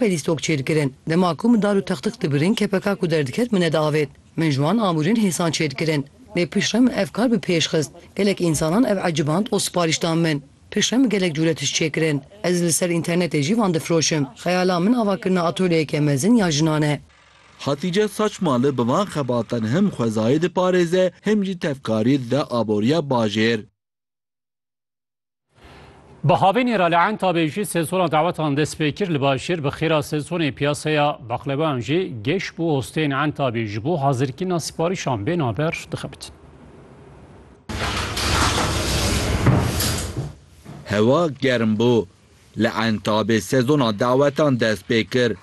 Pelîs tok çêr kirin. Dema ku min dar û textix dibirin kepeka ku derdiket min nediavêt. Min ji wan amûrên hêsan çêr kirin. Lê piştre min ev kar bi pêş xist. Gelek însanan ev eciband û siparîş dan min. Piştre min gelek cûre tişt çê kirin. Ez li ser înternetê jî van difiroşim. Xeyala min ava kirina atölyeyeke mezin ya jinan e. Hatîce Saçmali bi van xebatan him xwezayê diparêze him jî tevkarî dide aboriya bajêr. Bi havênê re li Entabê jî sezona dawetan dest pê kir li Başêr bi xêra sezonê piyaseya baqlebayan jî geş bû hosteyên Entabê ji bo hazirkirina siparîşan bên a ber dixebitin. Hewa germ bû Li Entabê sezona dawetan dest pê kir.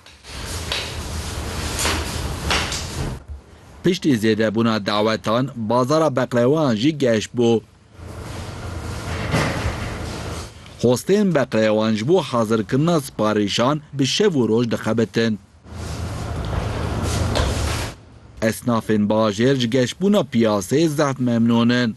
Piştî zêdebûna dawetan bazara beqlewayan jî geş bû. Hostên beqlewan ji bo hazirkirina siparîşan bi şev û roj dixebitin. Esnafên bajêr ji geşbûna piyaseyê zehf memnûn in.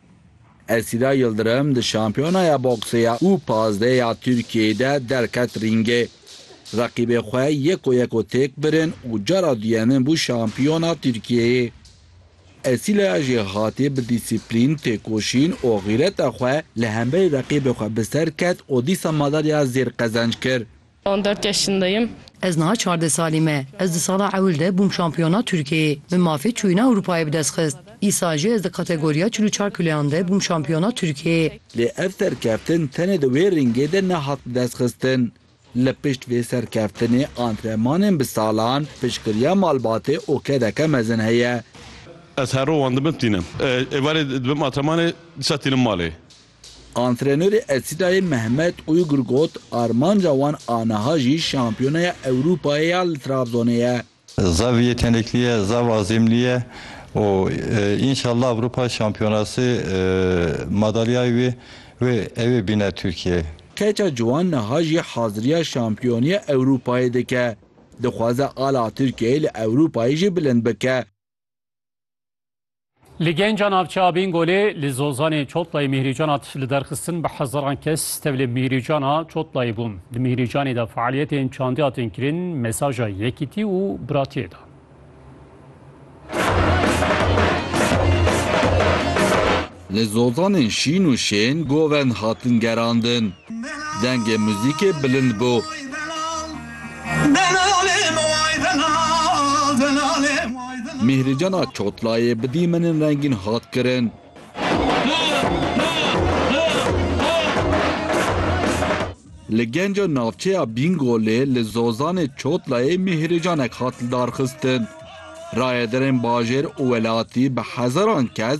Esîla Yildirim di Şampiyonaya Boksê ya û pazdehê ya Tirkiyeyê de derket rîngê. Reqîbê xwe yeko yeko têk birin û cara duyemin bû şampiyona Tirkiyeyê. Esîlaya jî hatî bi dîsîplîn, têkoşîn û xîreta xwe li hemberî reqîbê xwe bi ser ket û dîsa madalya zêr qezenc kir. On dört yaşındayım. Ez niha çardeh salî me. Ez di sala ewil de bûm şampiyona Tirkiyeyê. Min mafê çûyîna Ewropayê bi dest xist. Îsal jî ez di kategoriya çil û çar kiloyan de bûm şampiyona Tirkiyeyê. Lê ev serkeftin tenê di wê ringê de nehat bi dest xistin. Li pişt vê serkeftinê antrenmanên bi salan, piştgiriya malbatê û kedeke mezin heye. Ez her roj wan dibim tînim. Êvarê dibim antrenmanê, dîsa tînim malê. Antrenörê Esîdayê Mehmet Uygur got, Armanca wan a niha jî Şampiyonaya Ewropayê ya li Trabzonê ye. Zaf yetenekli ye, zaf azimli ye û înşallah Ewropa Şampiyonasê madalyayê wê wê ew ê bîne Tirkiyeyê. Keça ciwan niha jî haziriya Şampiyoniya Ewropayê dike. Dixwaze ala Tirkiyeyê li Ewropayê jî bilind bike. Li genca navçeya Bingolê li Zozanê Çotlayê Mîhrîcana tişt li derxistin bi hezaran kes tevlê Mîhrîcana Çotlayê bûn. Di Mîhrîcanê de faaliyetên çandî hatin kirin, mesaja yekîtî û biratiyê da. Li zozanên şîn û şên govend hatin gerandin. Dengê muzîkê bilind bû. Mîhricana Çotlayê bi dîmenên rengîn hat kirin. Li genca navçeya Bîngolê li zozanê Çotlayê mîhrîcanek hat lidarxistin. Rayedarên bajêr û welatî bi hezaran kes